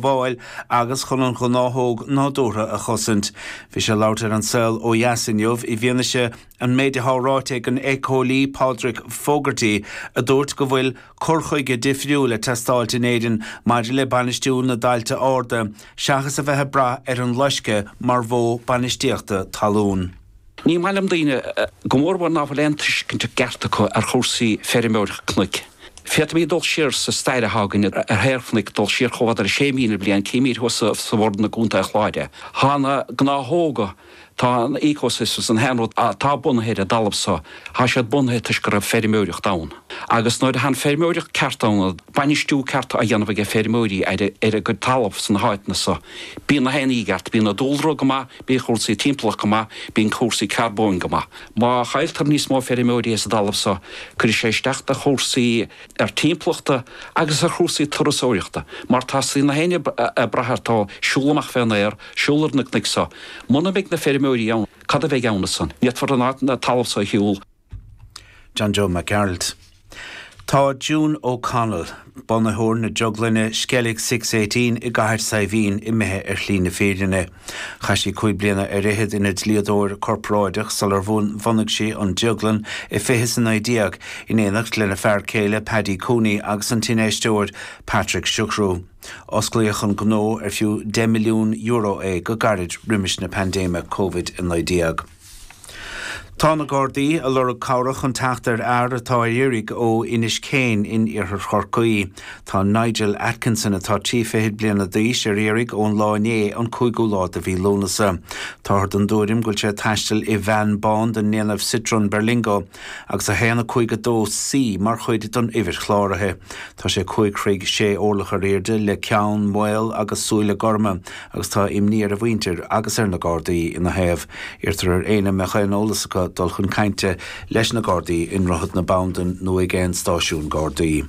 bhfáil agus chun an ghnáthóg nádúrtha a chosaint. Bhí sé ag labhairt ar An Saol ó Dheas inniu i bhfianaise an méid atá ráite ag an éiceolaí Pádraic Fogarty a dúirt go bhfuil cur chuige difriúil ag teastáilt in Éirinn maidir le bainistiú na dtailte arda seachas a bheith ag brath ar an loisceadh mar mhodh bainistíochta talún. Ní maith liom daoine, go mórmhór ná fuil aon tuiscint cheart acu ar chúrsaí feirmeoireacht cnoic. Féadfaimid dul siar sa stair féachaint ar shaol cnoic, dul siar chomh fada le 6,000 bliain, címid thuas sa Bhoirinn i gContae an Chláir. Tá na gnáthóga, tá an ecosystem, an t-aon rud atá bunaithe ar an dtalamh seo, tá siad bunaithe toisc go raibh feirmeoireacht ann. Agus nuair atánn feirmeoireacht ceart ann, bainistiú ceart á dhéanamh aige feirmeoirí ar a gcuid talamh sna háiteanna seo. Bíonn na héin i gceart, bíonn an dúlra go maith, bíonn cúrsaí timpeallacht go maith, bíonn cúrsaí carbóin go maith. Má chailltear níos mó feirmeoirí sa dtalamh seo, cuirfidh sé isteach ar chúrsaí timpeallachta agus ar chúrsaí turasóireachta, mar tá suim ag éinne ag brath ar an siúl amach fén aer, siúl ar na cnoic seo. Muna mbeidh na feirmeoirí ann, cad a bheidh ann as san? Ní fhéadfar an talamh seo a shiúl. John Joe Mac Gearailt. Tá June O'Connell, bunaitheoir na drioglainne Skellig Six Eighteen i gCathair Saidhbhín, imithe ar shlí na fírinne. Chaith sí cúig bliana ar fhichead ina dlíodóir corparáideach sular bhunaigh sí an drioglann i fiche is a naoi déag, in éineacht lena fear céile Páidí Cooney agus an t-infheisteoir Patrick Sugrue. Osclaíodh an gnó, ar fiú €10 milliún é, go gairid roimis na paindéime Covid-19. Tá na Gardaí ag lorg cabhrach chun teacht ar fhear atá ar iarraidh ó Inis Céin in Iarthar Chorcaí. Tá Nigel Atkinson atá trí fichid bliana d'aois ar iarraidh ón lá inné an 5ú lá de mhí Lúnasa. Táthar den dtuairim go bhfuil sé ag taisteal i veain bán den ndéanamh Citroën Berlingo agus 1 5-2 C mar chuid den uimhir chláraithe. Tá sé 5 throigh 6 orlach ar aoirde le ceann maol agus súile gorma. agus tá imní ar a mhuintir agus ar na Gardaí ina thaobh. Iarrtar ar éinne a mbeadh aon eolas acu dul chun cainte leis na Gardaí i nDroichead na Bandan nó ag aon stáisiún Gardaí.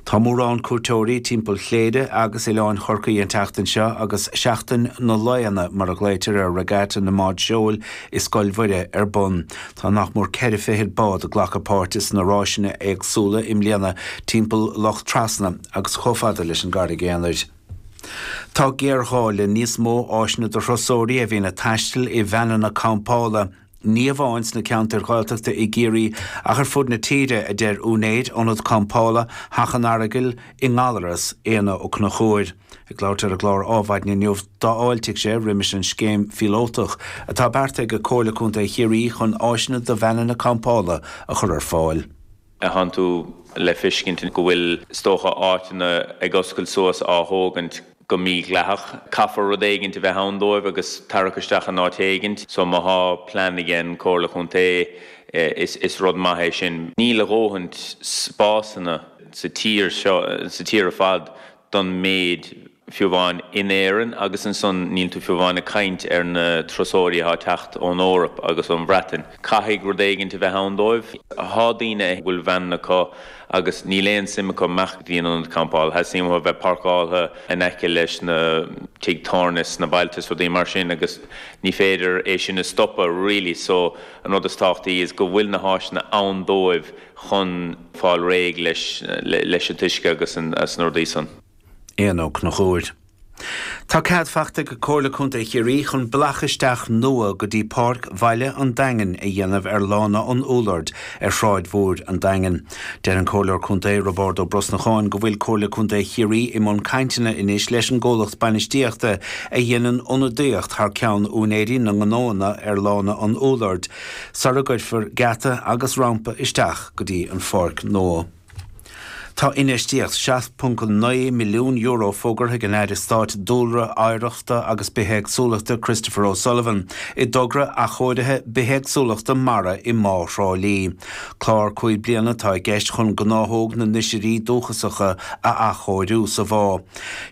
Tá mórán cuairteoirí timpeall Chléire agus Oileáin Chorcaí an tseachtain seo agus Seachtain na Laonna, mar a ghlaoitear ar Regatta na mBád Seoil i Scoil Mhuire, ar bun. Tá nach mór ceithre fichid bád ag glacadh páirte sna ráiseanna éagsúla i mbliana timpeall Loch Trasna agus chomh fada leis an gCarraig Aonair. Tá géarghá le níos mó áiseanna do thurasóirí a bhíonn ag taisteal i veaineanna campála, ní amháin sna ceantair Ghaeltachta i gCiarraí ach ar fud na tíre, a deir úinéir Ionad Campála Theach an Aragail i nGallaras, Éanna Ó Conchúir. Ag labhairt ar an gclár Ádhmhaidin inniu, d'fháiltigh sé roimis an scéim phíolótach atá beartaithe ag Comhairle Contae Chiarraí chun áiseanna do veaineanna campála a chur ar fáil. a thiontú le fiscint go bhfuil, is dócha, áiteanna ag oscailt suas á thógaint go mídhleathach. Caithfear rud éigint a bheith ann dóibh agus tarrac isteach in áit éigint. So má thá plean aigen gComhairle Contae is rud maith é sin. Níl a dhóthaint spásanna sa tír seo, sa tír ar fad, don méid. fiú amháin in Éirinn, agus ansan níl tú fiú amháin ag caint ar na turasóirí athá ag teacht ón Eoraip agus ón Bhreatain. Caithfidh rud éigint a bheith ann dóibh. Athá daoine a bhfuil veaineanna acu agus níl aon suim acu imeacht go dtí an ionad campála. Tá suim acu a bheith páirceáltha in aice leis na tigh tábhairne sna bailte is rudaí mar sin agus ní féidir é sin a stopadh really so an rud is tábhachtaí is go bhfuil na háiseanna ann dóibh chun fáil réidh leis an t-uisce agus is na rudaí san. Éanna Ó Conchúir. Tá cead faighte ag Comhairle Contae Chiarraí chun bealach isteach nua go dtí Páirc Bhaile an Daingin a dhéanamh ar Lána an Úlloird ar Shráid Mhór an Daingin. Deir an Comhairleoir Contae, Roibeárd Ó Brosnacháin, go bhfuil Comhairle Contae Chiarraí i mbun cainteanna anois leis an gcomhlacht bainistíochta a dhéanann ionadaíocht thar ceann úinéirí na ngnóanna ar Lána an Úlloird sara gcuirfear geata agus rampa isteach go dtí an pháirc nua. Tá infheistíocht €7.9 milliún fógartha ag an Aire Stáit Dúlra, Oidhreachta agus Bithéagsúlachta Christopher O'Sullivan i dtogra athchóirithe bithéagsúlachta mara i mBá Thrá Lí. Clár cúig bliana atá i gceist chun gnáthóg na n-oisirí dúchasacha a athchóiriú sa bhá.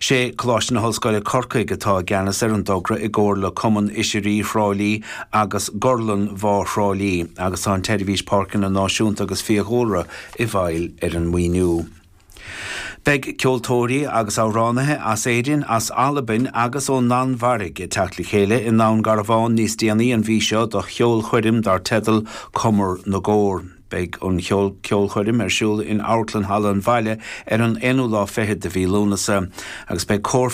Sé Coláiste na hOllscoile Corcaigh atá i gceannas ar an dtogra i gcomhar le Cumann Oisirí Thrá Lí agus Gorlann Bhá Thrá Lí agus tá an tSeirbhís Páirceanna Náisiúnta agus Fiadhúlra i bhfeighil ar an maoiniú. Beidh ceoltóirí agus amhránaithe as Éirinn, as Albain agus ón Danmhairg ag teacht le chéile i nDún Garbhán níos déanaí an mhí seo do cheolchoirm dar teideal Cumar na gCór. Beidh an cheolchoirm ar siúl in Amharclann Halla an Bhaile ar an aonú lá fichead de mhí Lúnasa agus beidh cór